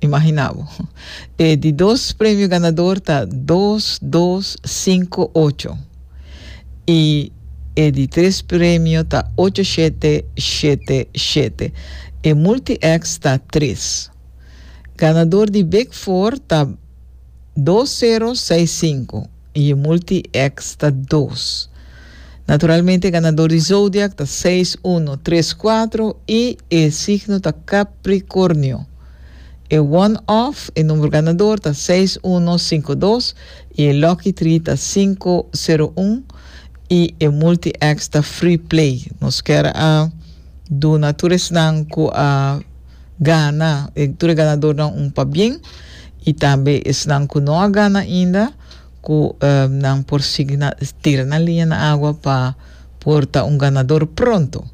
Imagina bo. E di dos premio ganador ta dos, dos, cinco, ocho. Y e di tres premio ta ocho, shete, shete, shete. E multi-X ta tres. Ganador di Big Four ta dos, zero, seis, cinco. Y e multi X ta dos. Naturalmente e ganador di zodiac ta seis uno tres cuatro y e signo ta Capricornio. E one off, e number ganador ta seis uno cinco dos y e lucky tree ta cinco zero un y e multi X ta free play. Nos kier a duna tur esnan cu a. gana, e tur e ganadornan un pabien y tambe esnan cu no a gana ainda cu nan por sigui na tira nan liña na agua pa por ta un ganador pronto.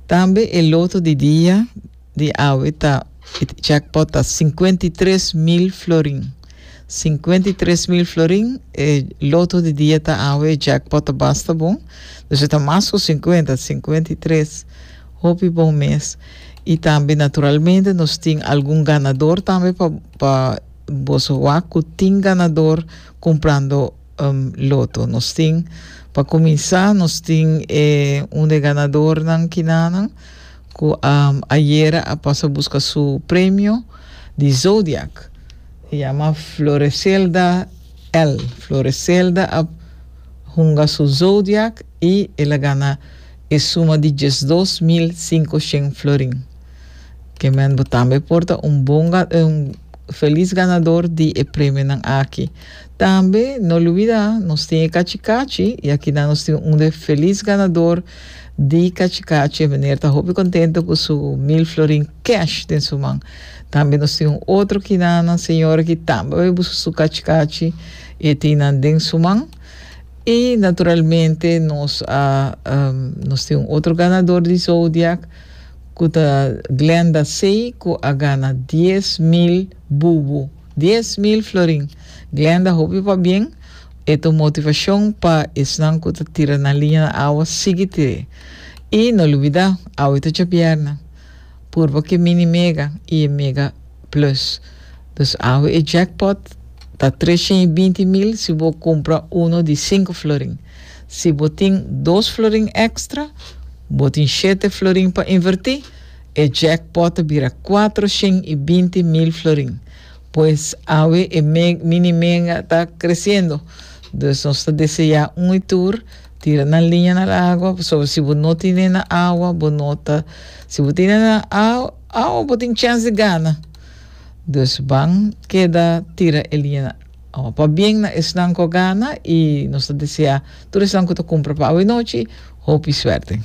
Tambe e loto di dia di awe ta e jackpot ta cincuenta y tres mil florin. Cincuenta y tres mil florin e loto di dia ta awe e jackpot ta basta bon, dus e ta mas cu cincuenta, cincuenta y tres. Hopi bon mes. Y tambe naturalmente nos tin algun ganador tambe pa pa boso wak cu tin ganador cumprando um loto. Nos tin pa cuminsa nos tin e un de ganadornan kinanan cu a ayera a pasa busca su premio di zodiac. E yama Floreselda L. Floreselda a hunga su zodiac I el a gana e suma di diesdos mil sinku shen florin. Ke men bo tambe por ta un bon gan un felis ganador di e premionan aki. Tambe no lubida nos tin e kachi kachi i akina nos tin un e felis ganador di kachi kachi e meneer ta hopi kontento ku su mil florin kesh den su man. Tambe nos tin un otro kinanan señor ki tambe a bai buska su kachi kachi e tin nan den su man. Y naturalmente nos a nos tin un otro ganador di Zodiac cu ta Glenda Sey cu a gana dies mil bubu, dies mil florin. Glenda hopi pabien, e ta un motivacion pa esnan cu ta tira nan liña na awa sigui tir'e. Y no lubida, awe ta djabierna, purba cu e mini mega y e mega Plus. Dus awe e jackpot ta tres shen i binti mil si bo kumpra uno di sinku florin. Si bo tin dos florin èkstra, bo tin shete florin pa invertí, e jackpot ta bira kuatro shen i binti mil florin. Pues awe e mini mega ta kresiendo. Dus nos ta deseá un i tur tira nan liña na e awa pasobra si bo no tine nan awa bo no ta si bo tine nan awa. Awa bo tin chens di gana. Dus ban keda tira e liña nan. Awa pabien na esnan ku a gana i nos ta deseá tur esnan ku ta kumpra pa awe nochi hopi suerte.